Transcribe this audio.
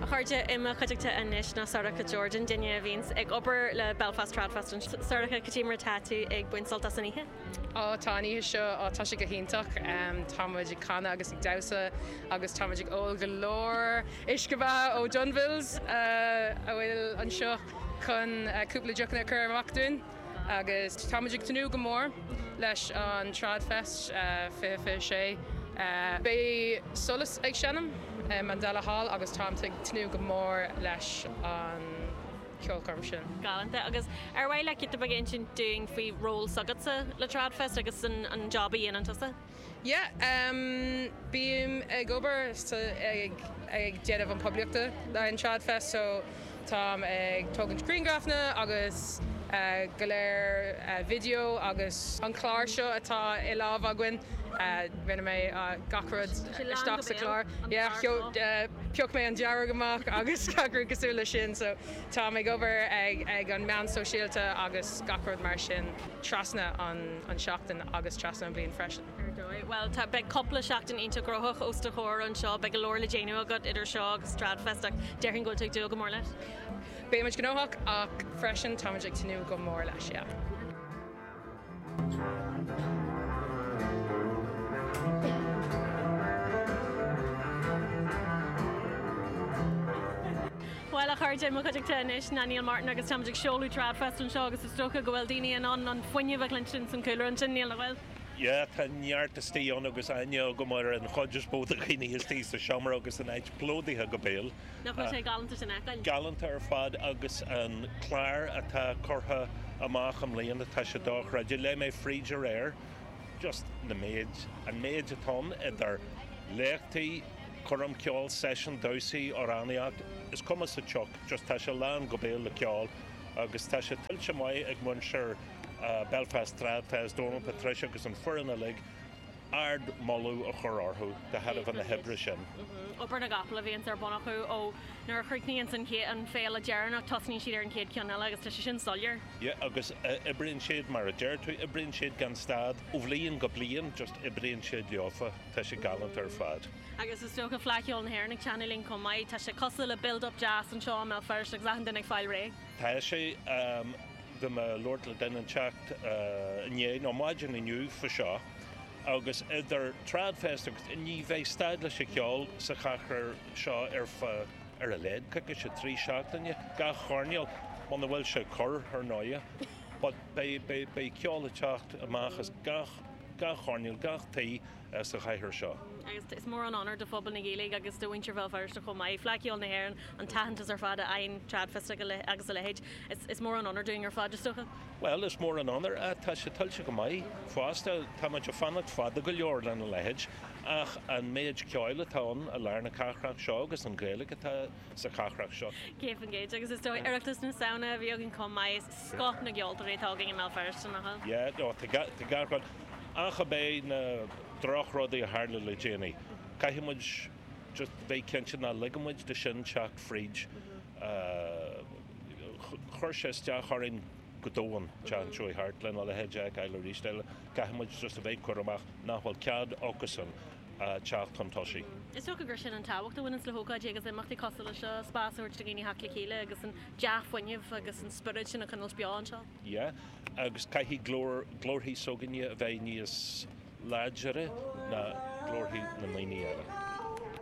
A chairde, i mo chuideachta anois ná Sorcha Jordan, duine a bhíonns ag obair le Belfast Tradfest anseo. Sorcha, cad é mar atá tú ag baint sult as an oíche? Ó, tá an oíche seo, ó tá sé go hiontach. Tá muid ag canadh agus ag damhsa agus tá muid ag ól go leor uisce beatha ó Dunville's a bhfuil anseo chun cúpla deochanna a chur amach dúinn. Agus tá muid ag tnúth go mór leis an Tradfest 2026. Beidh Solas ag seinm i Mandela Hall agus táim ag tnúth go mór leis an cheolchoirm sin. Galánta. Agus ar mhaith leat cúpla rud a insint dúinn faoi ról s'agatsa le Tradfest agus an job a dhéanann tusa? Yeah, bím ag obair sa, ag, ag déanamh an poiblíochta le an Tradfest so táim ag tógaint grianghrafanna agus go leor video agus an clár seo atá i lámh againn rinne mé gach rud isteach sa chlár. Yeah, pioc mé an dearg amach agus gach rud cosúil leis sin so táim ag obair ag an meán sóisialta agus gach rud mar sin. trasna an seachtain agus trasna an bhliain freisin. Ar dóigh. Bhuel, tá, beidh cúpla seachtain iontach gnóthach os do chomhair anseo. Beidh go leor le déanamh agat idir seo agus Tradfest ach déarfainn go bhfuil tú ag dúil go mór leis. Beidh muid gnóthach ach freisin tá muid ag tnúth go mór leis, yeah. Bhuel, a chairde, i mo chuideachta anois ná Neil Martin agus táimid ag seoladh Tradfest anseo agus is dócha go bhfuil daoine in ann an fuinneamh a chluinstin san cúlra ansin, Neil, nach bhfuil? Yeah, tá neart istigh ann agus aithne agam ar an chuid is mó de dhaoine istigh sa seomra agus an áit plódaithe go béal. Nach bhfuil sé galánta sin a fheiceáil? Galánta ar fad agus an clár atá curtha amach i mbliana, tá sé dochreidte. Léigh mé fríd aréir. just na méid, an méid atá ann idir léachtaí, coirm ceoil, seisiúin, damhsaí, amhránaíocht, is cuma sa tsioc, just tá sé lán go béal le ceol agus tá sé tuillte maith ag muintir Belfast Tradfest, Dónal, Patricia agus an foireann uilig, ardmholadh a chur orthu de thairbhe na hoibre sin. Obair na gcapall a bhíonns ar bun acu ó nuair a chríochnaíonns an chéad, an féile deireanach tosaíonn siad ar an chéad cheann eile agus tá sé sin soiléir. Yeah, agus oibríonn siad, mar a deir tú, oibríonn siad gan stad, ó bhliain go bliain, just oibríonn siad leofa, tá sé galánta ar fad. Agus is dócha Fleadh Cheoil na hÉireann ag teannadh linn chomh maith, tá sé cosúil le build up deas anseo i mBéal Feirste agus achan duine ag fáil réidh. Tá sé, bhí mé ag labhairt le duine inteacht inné, nó maidin inniu faoi seo, agus idir Tradfest agus, ní bheidh stad leis an cheol sa chathair seo ar feadh, ar a laghad coicís nó trí seachtaine gach coirnéal, muna bhfuil sé ag cur, ar ndóighe. But beidh, beidh ceol ag teacht amach as gach, gach coirnéal, gach tigh sa chathair seo. Agus is mór an onóir do phobal na Gaeilge agus do mhuintir Bhéal Feirste chomh maith, Fleadh Cheoil na hÉireann, an t-aitheantas ar fad a fhaigheann Tradfest agus a leithéid. Is mór an onóir dúinn ar fad, is dócha. Bhuel, is mór an onóir ach tá sé tuillte go maith fosta. Tá muid ag fanacht fada go leor lena leithéid ach an méid ceoil atá ann i lár na cathrach seo agus an Ghaeilge atá sa chathrach seo. Céad faoin gcéad. Agus is dóigh Oireachtas na Samhna a bhí againn chomh maith, is scoth na gceoltóirí atá againn i mBéal Feirste, nach bhfuil? Yeah, no, tá gach rud. Ach ab é na drochrudaí a tharla le déanaí, caithfidh muid just bheith cinnte nach ligeann muid dó sin teacht fríd. Chuir sé isteach orainn go domhain, tá a fhios agat, lena leithéid a fheiceáil arís eile. Caithfidh muid just a bheith cúramach nach bhfuil cead acusan teacht chun tosaigh. Is dócha gur sin an tábhacht a bhaineanns le hócáidí agus imeachtaí cosúil leis seo, spás a thabhairt do dhaoine theacht le chéile agus an dea-fhuinneamh agus an spiorad sin a choinnilt beo anseo. Yeah, agus caithfidh glór, glórthaí s'againne a bheith níos láidire ná glórthaí na ndaoine eile.